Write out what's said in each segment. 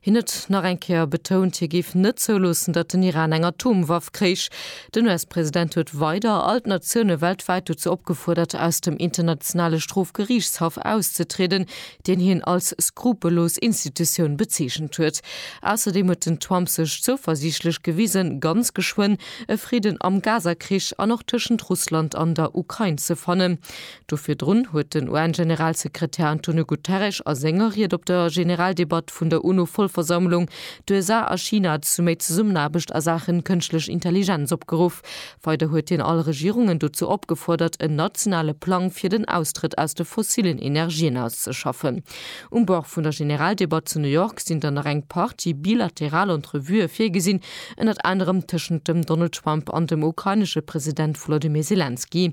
Hien huet nach eng Kéier betount, hie géif net zouloossen, datt den Iran eng Atomwaff kréich. Den US-President huet weider all d'Natioune weltwäit dozou opgefuerdert, aus dem Internationale Strofgeriichtshaff auszetrieden, deen hien als skrupellos Institutioun bezeechent huet. Ausserdeem huet den Trump sech zouversiichtlech gewisen, ganz geschwënn e Fridden am Gaza-Krich an och tëschent Russland an der Ukrain ze fannen. Do virdrun huet den UN-Generalsekretär Antonio Guterres a senger Ried op der Generaldebatt vun der UNO-Vollversammlung d'USA a China zu méi Zesummenaarbecht a Saachen Kënschtlech Intelligenz opgeruff. Weider huet hien all Regierungen dozou opgefuerdert en nationale Plang fir den Austrëtt aus de fossillen Energien auszeschaffen. Um Bord vun der Generaldebatt zu New York sinn dann nach eng Partie bilateral Entrevuë virgesinn, ënnert anerem tëschent dem Donald Trump an dem ukrainesche President Volodymyr Selenskyj.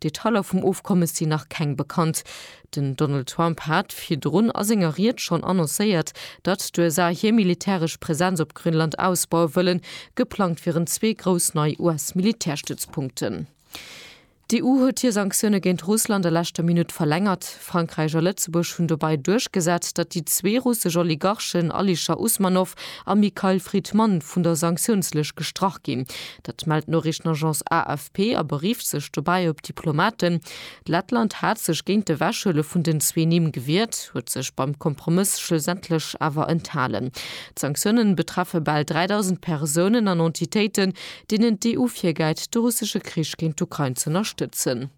D'Detailer vum Ofkommes sinn nach keng bekannt. Den Donald Trump hat virdrun a senger Ried schonn annoncéiert, datt d'USA hir militäresch Presenz op Grönland ausbaue wëllen. Geplangt wieren zwee grouss nei US-Militärstützpunkten. D'EU huet hir Sanktioune géint Russland a leschter Minutt verlängert. Frankräich a Lëtzebuerg hunn dobäi duerchgesat, datt déi zwee russesch Oligarchen Alisher Usmanov a Mikhail Fridman vun der Sanktiounslëscht gestrach ginn. Dat mellt d'Noriichtenagence AFP a berifft sech dobäi op Diplomaten. Lettland hat sech géint de Wechhuele vun den zwee Nimm gewiert, huet sech beim Kompromëss schlussendlech awer enthalen. D'Sanktiounen betreffe bal 3.000 Persounen an Entitéiten, deenen d'EU virgäit, de russesche Krich géint d'Ukrain z'ënnerstëtzen.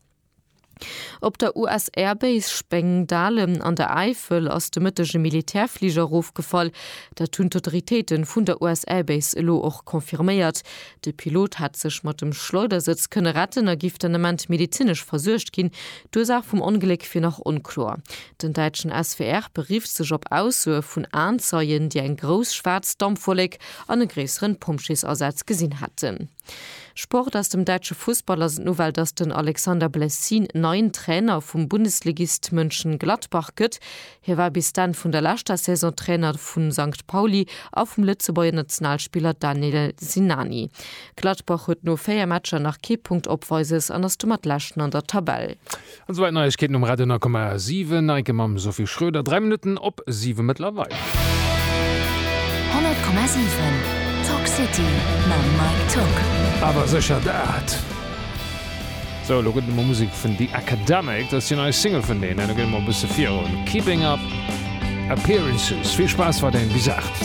Op der US-Air-Base Spengdahlem an der Äifel ass de Mëtteg e Militärfliger erofgefall. Dat hunn d'Autoritéite vun der US-Air-Base elo och confirméiert. De Pilot hätt sech mat dem Schleudersëtz kënne retten a giff den Ament medezinesch versuergt ginn. D'Ursaach vum Ongléck wier nach onkloer. Den däitschen SWR berifft sech op Aussoe vun Aenzeien, déi eng grouss schwaarz Dampwollek an e gréissere Pompjeesasaz gesinn hätten. Sport Aus dem däitsche Fussball ass d'Nouvelle, dass den Alexander Blessin neien Trainer vum Bundesligist Mönchengladbach gëtt. Hie war bis d'Enn vun der leschter Saison Trainer vu Sankt Pauli a vum Lëtzebuerger Nationalspiller Daniel Sinani. Gladbach huet no 4 Matcher nach kee Punkt opweises an ass domat Leschten an der Tabell. An souwäit Neiegkeeten um Radio 9,7. Neike mam Sophie Schröder, 3 Minutten op 7 mëttlerweil. 100,7 Talk City mam Mike Tock. Awer sécher dat! Sou, elo gëtt et emol Musek vun The Academic. Dat ass déi nei Single vun deenen. Elo geet et mol e bësse virun. Keeping Up Appearances. Vill Spaass, wat een bis 8.